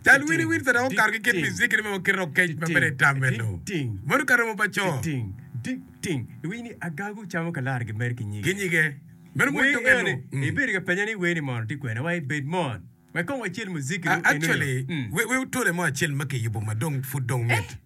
Cal winiwin pe dok okato ki kit Ezekiel ma kite okec ma bedo i tam meno. Meno ka romo pa co. Iwinyo ni agagu camo kalara gimed ki nyige. Ki nyige. Meno mot to kene. Ibedo ka penya ni weni mono tye kwene wa i bed mot. Wek kong wacel muziki nu eno nu. Actually, we otole mo acel ma kiyubo ma dong pud dong mit.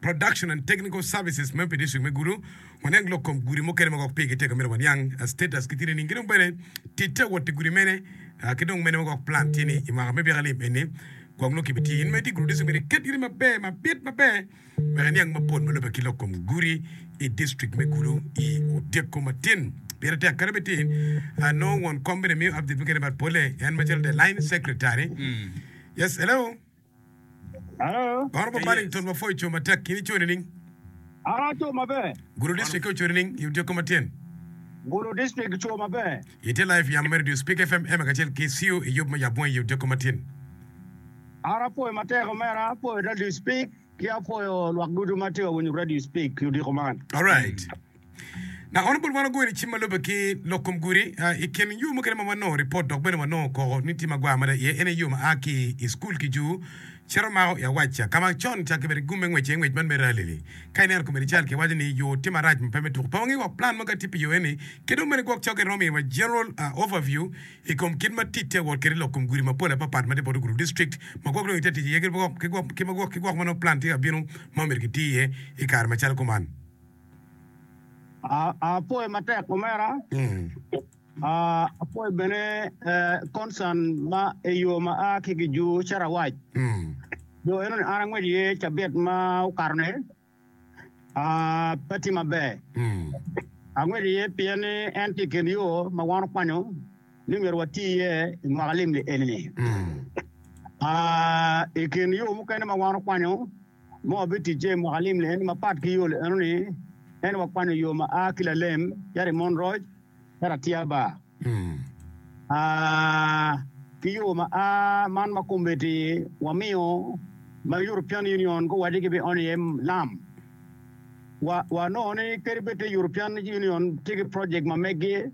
Production and Technical Services me pi District me Gulu, waniang lok kom gudi mukene ma gwok pigi teka myero waniang status ki tine niing ki dong bene titte wot i gudi mene ki dong mene ma gwok plan tye ni i mwaka me byeka lim eni gwok nongo kibitye in ma itye i Gulu District myero iket iri maber mabit maber wek iniang mapol ma lube ki lok kom gudi i District me Gulu i otyeko matin pire tek kadi bed tin ah, nongo won kom bene miyo update mukene but pole en macalo the line secretary yes hello Oro pa Paddington mapwo i co matek ki nico nining? Oro co maber. Gulu District ki oco nining i otyeko matyen? Gulu District co maber. Ite live yamo me redio Speak FM Emma kacel ki CU i yub me Yabongi i otyeko matyen. Oro apwoyo matek omera, apwoyo redio Speak ki apwoyo lwak ducu ma tye ka winyo redio Speak i odiko man. Alright. Dok kono bot wan wagoyo ni cim ma lubbe ki lok kom gudi, i kin yo mukene ma wanongo ripot dok bene wanongo koko ni tye ma gwar mada iye, en aye yo ma a ki i cukul ki jur cito mako i Awacha, ka ma con ca kibedo gum me ngwec iye ngwec man me rali-li. Ka ineno komiti cal kiwaco ni yo tye marac ma pe me tuko, pe wangi woko plan ma ka tye pi yo eni, ki dong bene gwok cokke romo miyowa general overview i kom kit ma ticce wot kwede i lok kom gudi mapol apapat ma tye bot ogudu district ma gwok dong ite tic iye ki gwok ma nongo plan tye ka bino ma myero giti iye i kare macalo kuman. Apwoyo matek omera. Apwoyo bene concern ma eyo ma a ki gi ju carawac. Jo eno ni an angwec iye cabit ma okato ni pe tye maber. Angwec iye pien ni en tye kin yo ma wan okwanyo ni myero wati iye i mwaka lim ni eni. I kin yo mukene ma wan okwanyo ma wabiticce i mwaka alim-li en mapat ki yol eno ni en wakwano yo ma a ki Lalem cito i Monroc cito Atia Bar, ki yo ma a man ma kombeddi wamiyo ma European Union guwaco ki bi ono iye lam. Wa, wanongo ni kadi bed te European Union tye ki project ma meggi,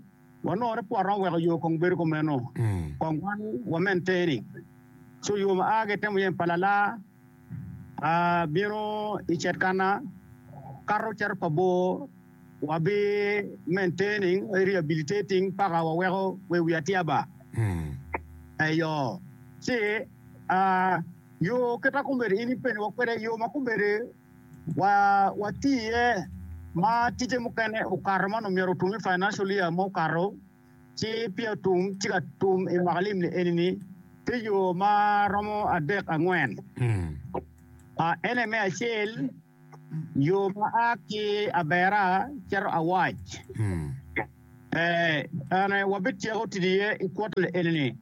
wanongo ni pwod romo weko yo kong bedo kumeno, kong wan wamenteni. So yo ma a ki itemo yem pa lala, Abino i Cetkana, kato cito pa bor, wabi maintaining, rehabilitating paka waweko we wi atyaba. Eyo, ci yo kita kombeddi in ipeni wa kwede, yo ma kombeddi wati iye ma tije mukene okato man omyero otum i financial year ma okato. Ci Pia tum ci ka tum i mwaka limni eni-ni tye yo ma romo adek angwen. Ene me acel, yo ma a ki Abera cito Awac. Bene wabityeko tic iye i kwot-ti eni-ni.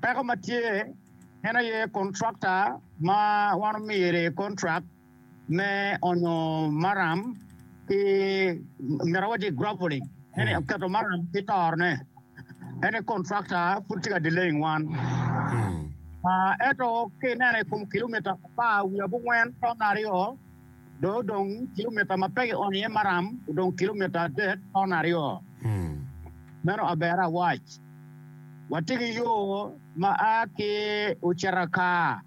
Peko ma tye en aye kontrakta ma wan omyere kontrak. me onyo maram ki myero awadi graveling ene oketo maram ki toro ne ene contractor pud tye ka delaying wan eto ki ineno i kom kilometer apar wiye abongwen ton aryo do odong kilometer ma pe ki onyo iye maram odong kilometer adek ton aryo meno aber awac watye ki yo ma a ki oceta kar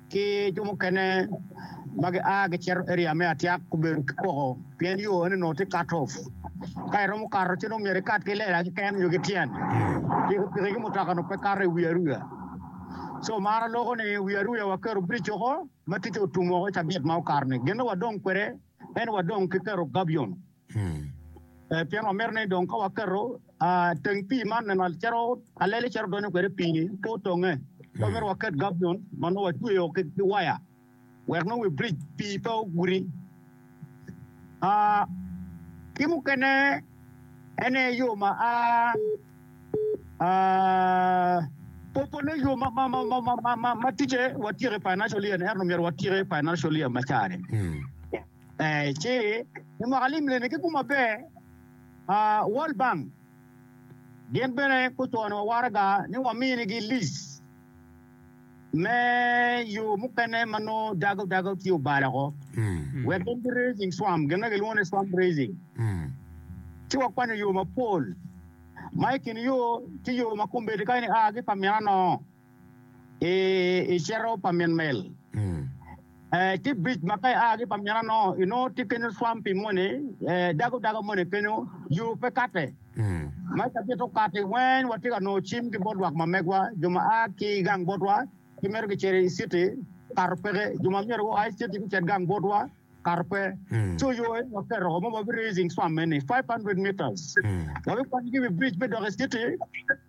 ki jo mukene ma gia gicito area me Atyak gubedo ki koko pien yo eno onongo tye cut off, ka iromo kato ci nongo myero ikat ki lela keken nyo ki tyen, pikipiki ki mutoka onongo pe kato i wi aruya, so mar aloko ni wi aruya waketo bridge oko ma ticce otum woko i cabit ma okato ni, gin ma wadong kwede eno wadong ki keto gabion. Pien wamito ni dong ka waketo teng pii man neno cero alele cero donyo kwede pii-ni pe otonge. Pe wamito waket gabjon ma nongo watweyo ki waya wek nongo wi bric pii pe oguti. Ki mukene en aye yo ma popone yo ma ticce watyeko i financial year-ni ento myero watyek financial year macani. Ci i mwaka lim leme ki kum maber, World Bank gin bene gucwanowa waraga ni waminigi lic me yo mukene ma nongo dago dago ci obalo woko wek gin ki raising swamp, gin ma gilwongo ni swamp raising. Ci wakwanyo yo mapol ma i kin yo tye yo ma kombeddi kany-ni a ki pa mina nongo. i i cito pa min mel eh, ki bic ma ka ia ki pa mina no inongo tye kenyo swampi moni eh, dago dago moni kenyo yo pe kate ma i kabit okati weny watye ka nongo cim ki bot lwak ma megwa jo ma a ki i gang botwa ki mito gicito i citi kato peke jo ma myero gua i citi gucit gang botwa kato pe co yo eni waketo ma wabi raising swam eni 500 meters wabikwanyo ki wi bridge me dok i citi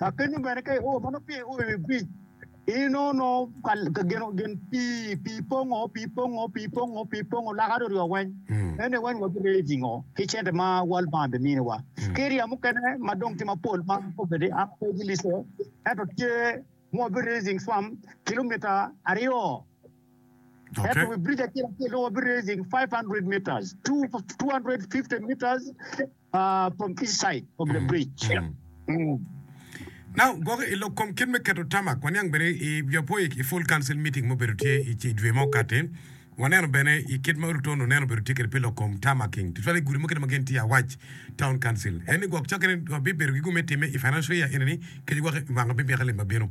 Apenyo bene, ka io ma nongo piny io i wi biric, in ono ka geno gen pii, pii pongo, pii pongo, pii pongo, pii pongo laka ryoryo weng, ene weng wabireyo i jingo ki cente ma World Bank biminiwa. Ki ryem mukene ma dong tye mapol ma kobedi an pe gilico, ento tye ma wabireyo jing swam kilomita aryo, ento wi biric acel acel dong wabireyo jing 500 metres, 250 metres, Uh, from east side of the bridge. Yeah. Mm. Now, gwoko i lok kom kit me keto tamak, waniang bene i jo poik i full council meeting mubedo tye i ci dwe mo kati. Waneno bene i kit ma Ruto no neno bedo tye kede pi lok kom tamaking, tutwal i gudi mukene ma gin tye awac town council. En ni gwok cokke ni bibedo gi gum me time i financial year eni ni keci gwok i wanga bibika lim ma bino.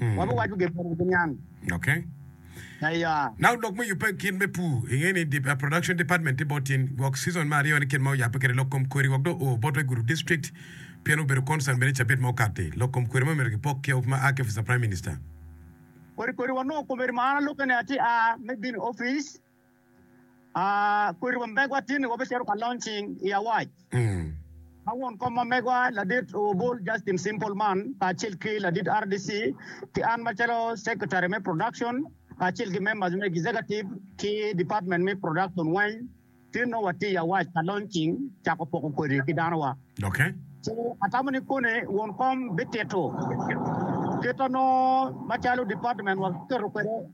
wabiwaco gin mene ki niang. Okay. Aya. Na odok me yubbe gin me pur, inge ni di, uh, production department tye bot tin gwok season me aryo ni kit ma oyabbe kwede lok kom kweri wok dong oo bot Waiguru district pien obedo concern bene cabit ma okatti. Lok kom kweri ma myero kipok ki of ma aa ki office of prime minister. Kodi kodi wanongo komiti ma an alukke ni atye aa me bino office. kodi wa megwa tye ni wabicito ka launching i awac ma won kom ma megwa ladit Obul Justin Simple man kacel ki ladit RDC ki an macalo secretary me production kacel ki members me executive ki department me production weng tye nongo watye i awac ka launching cako poko kodi ki danowa. Okay. So atamo ni koni won kom bitito kit ma nongo macalo department wa keto kwede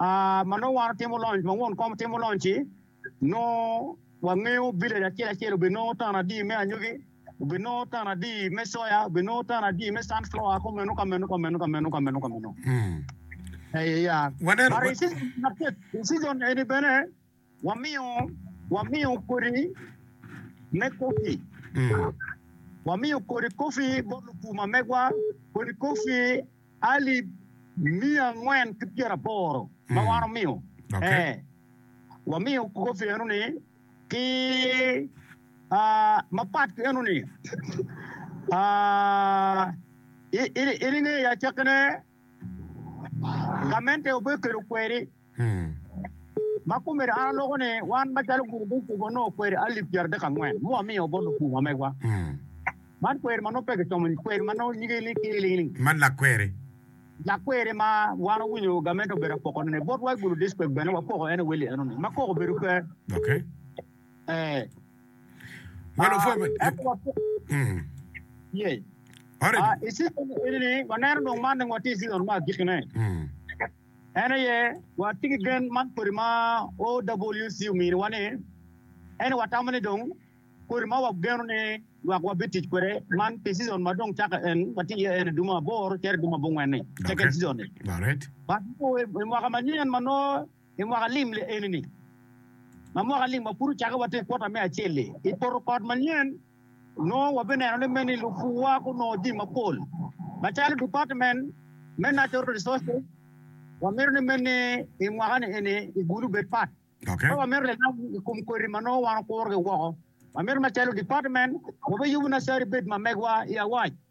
Ma nongo wan otimo lonc, ma won kom timo lonc-ci, nongo wangeyo village acel acel obinongo tan adi me anyogi, obinongo tan adi me soya, obinongo tan adi me sunflower ki omenu ka menu ka menu ka menu ka menu ka menu. Ee ya. Waneno- But in season number tit, in season eni bene Wamiyo, wamiyo kodi me kofi, wamiyo kodi kofi bot lupuma megwa, kodi kofi alip miya angwen ki pyera aboro ma wan omiyo, ee, wamiyo kofi eno-ni ki mapat ki eno-ni, in ingeyo acakkine, gamente obekelo kweri. Ma kumedo an aloko ni wan macalo gurup me cuk wanongo kweri alip pyeradek angwen mu wamiyo bot lupur wa megwa. Man kweri ma nongo pe kicomo ni kweri ma nongo nyige ni Kiri Ling Ling. Man lak kweri. Lak kweri ma wan wawinyo gamente obedo apoko ne bot wa i Gulu District bene wapoko en Willy enoni ma koko obedo pe. Okay. Eh. Well, uh, mm. Yeah. Alright. Uh, i season enini waneno dong man dong watye i season ma agikine. Mm. En aye watye ki gen man kodi ma OWC ominiwa ni ento watamo ni dong kodi ma wageno ni lwak wa bitic kwede man pi season ma dong cako en ma tye iye en i dumo aboro cito i dumo abongwen ni second season ni but nongo i mwaka manyen ma nongo i mwaka lim eni ni ma mwaka lim wa pud ocake watye i quarter me acel-li i poto kot manyen Nongo wabineno ni meno i lupuwa gunongo jami mapol macalo Department me Natural Resources wamito ni meno i mwaka-ni eni gigulu obed pat. Ka wamito lilam i kom koti ma nongo wan wakurogi woko, wamito macalo Department wabiyubu nacari bed ma megwa i awac.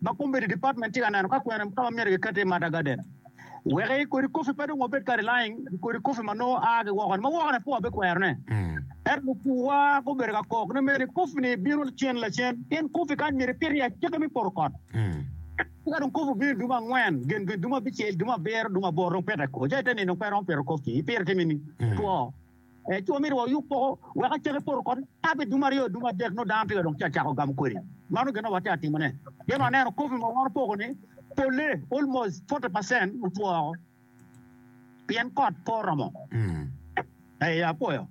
ma Committee Department tye ka neno ka kwene ka ma myero kiket iye Mata Garden wek i kodi coffee pe dong wabed kadi lying i kodi coffee ma nongo aa ki woko-ni ma woko-ni pud wabikwero ne. Ento lupuwa gubedo ka kok ni mere coffee ni bino lacen lacen pien coffee kany myero ipit iye acakki me poto kot. Ki ka dong coffee obino i dumo angwen gen gen dumo abicel dumo abiro dumo aboro dong pite ko ca ite nino pe iromo pito coffee ipito ite mini two. Ento myero wayub poko wek acake poto kony abed dum aryo, dum adek nongo dano tika dong ci acako gamo kodi. Mano gin ma watye ka timone. Pien waneno kopi ma wango poko ni polle almost forty percent otwo woko pien kot pe oromo. Ee, apwoyo.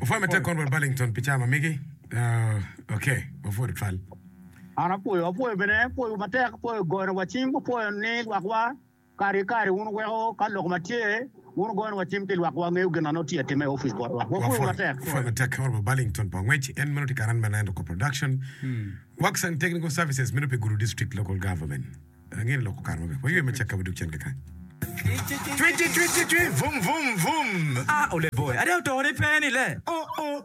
Wapwoyo matek Kon Rwot Burlington pi cawa ma megi. Uh, ok, wapwoyo tutwal. An apwoyo, apwoyo bene, apwoyo matek, apwoyo goyowa cing, apwoyo ni lwakwa Kare ki kare wun wuweko ka lok ma tye wun goyo wa cim ki lwak wa ngeyo gin ma nongo tye ka timme i opic bot wa. Wapwoyo wu matek. Pwoyo matek kawor pa Burlington pa ngwec en meno tye Karan Maland Oko Production Works and Technical Services meno pi Gulu District Local Government Rangine Loko Kare Maber Waywe Macek Ka Wadug Cen Kakany Twi twi twi twi twi Vum vum vum Ah Oleboe Ada Otone Pe ni le oh oh.